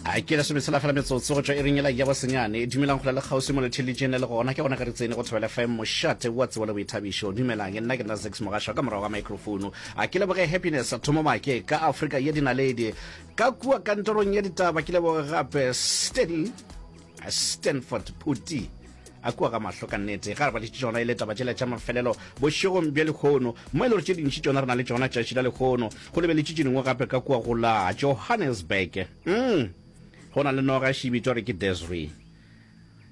a ke lesome tshela fela metsotso go tšwa e ringela ya bosenyane e dumelang go la le kgauswi mo letheletšeng le le gona ke gona ka re tsene go thobela fm mošate wa tsebo le boithabišo dumelang e nna ke nna sex mogašwa ka morago ga microphone a ke leboge happiness thomo make ka afrika ye dinaledi ka kua kantorong ya ditaba ke leboge gape steady Stanford Phuti a kua ka mahlo ka nnete ga re badiše tšona e le taba tšela tša mafelelo bošegong bja lehono mo e le gore tše dintši tšona re na le tšona tšatši la lehono go lebeletše tše dingwe gape ka kua go la johannesburg mm. go na le noga e šibitwa re ke desri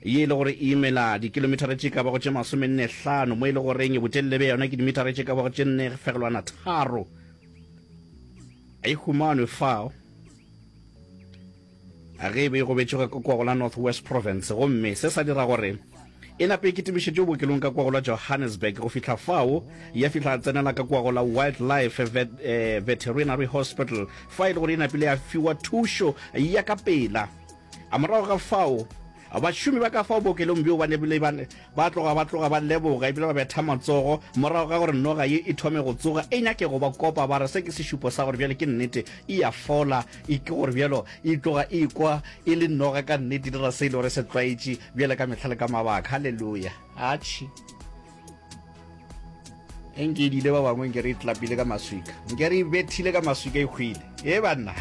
ye e le gore e imela dikilomithara tše ka bago tše masomenne hlano mo e le goreng botelele bja yona ke dimithara tše ka bago tše nne fegelwana tharo e humanwe fao Ge e be e gobetše ka kwago la North West Province gomme se sa dira gore e nape e kitimišetšwe bookelong ka kwago la Johannesburg go fihla fao ya fihla a tsenela ka kwago la Wildlife Vet, eh, Veterinary Hospital fa e le gore e napile ya fiwa thušo ya ka pela. A morago ga fao Bašomi ba ka fao bookelong bjoo ba ne bile ba ba tloga ba tloga ba leboga ebile ba betha matsogo morago ga gore noga ye e thome go tsoga e nyake go ba kopa ba re se ke sešupo sa gore bjale ke nnete e a fola e ke gore bjalo e tloga e kwa e le noga ka nnete e dira se e le gore se tlwaetše bjale ka mehla le ka mabaka. Haleluya! Atšhi! enkedile ba bangwe nke re itlapile ka maswika nke re ibethile ka maswika e hwile e banna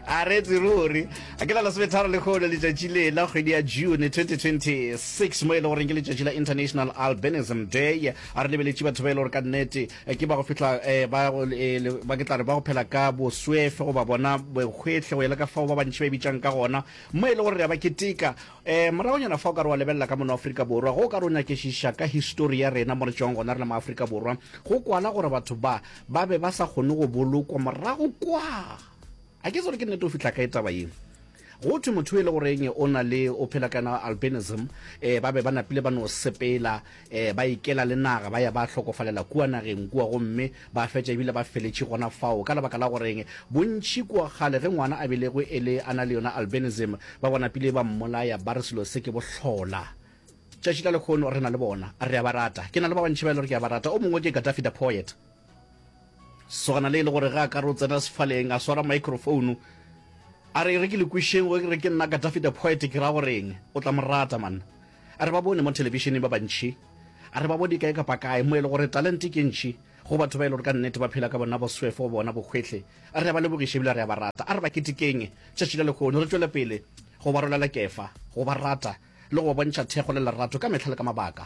a re tsiruri a ke la lesometharo le kgolo letšatši le la kgwedi ya june 2026 mo e le goreng ke letšatši la international albinism day a re lebeletše batho ba e le gore ka nnete eh, ke ba go fihla eh, ba go- eh, le- ba ke tla re ba go phela ka boswefe goba bona bohwehle go ya le ka fao ba bantši ba e bitšang ka gona mo e le gore re a ba keteka Ee, moragonyana fa o ka re wa lebelela ka mono Afrika Borwa, ge o ka re o nyakešiša ka histori ya rena mo re tšwago gona re le maAfrika Borwa, go kwala gore batho ba ba be ba sa kgone go bolokwa morago kwa. A ke se gore ke nnete o fihla kae taba ye? Go thwe motho e le goreng o na le o phela ka yona albinism, ee, ba be ba napile ba no sepela Ee, ba ikela le naga, ba ya ba hlokofalela kua nageng kua gomme ba fetša e bile ba feletše gona fao. Ka lebaka la go reng? Bontši kua kgale, ge ngwana a belegwe e le a na le yona albinism, ba bona pele ba mmolaya, ba re selo se ke bohlola. Tšatši la lehono re na le bona. Re a ba rata. Ke na le ba bantši ba e le gore ke a ba rata. O mongwe ke Gaddafi the poet. Swana le e le gore ge a ka re o tsena sefaleng a swara microfounu a re e re ke le kwišeng go re ke nna ka Daffy the Poet ke ra go reng o tla mo rata man. A re ba bone mo thelebišeneng ba bantši a re ba bone kae kapa kae mo e le gore talente ke ntši go batho ba e le gore ka nnete ba phela ka bona boswefo bona bohwehli. A re a ba lebogiše ebile a re a ba rata. A re ba ketekeng tšatši la lekgono re tšwele pele go ba rolela kefa, go ba rata le go ba bontšha thekgo le lerato ka mehla le ka mabaka.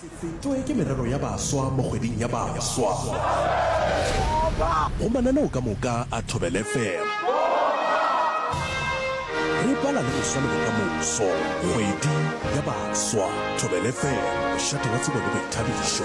Se fetwe ke merero ya baswa mo kgweding ya baswa. Go mananeo ka moka a Thobel FM. Re bala le go swanelo ka moso. Kgwedi ya baswa. Thobel FM, mošate wa tsebo le boithabišo.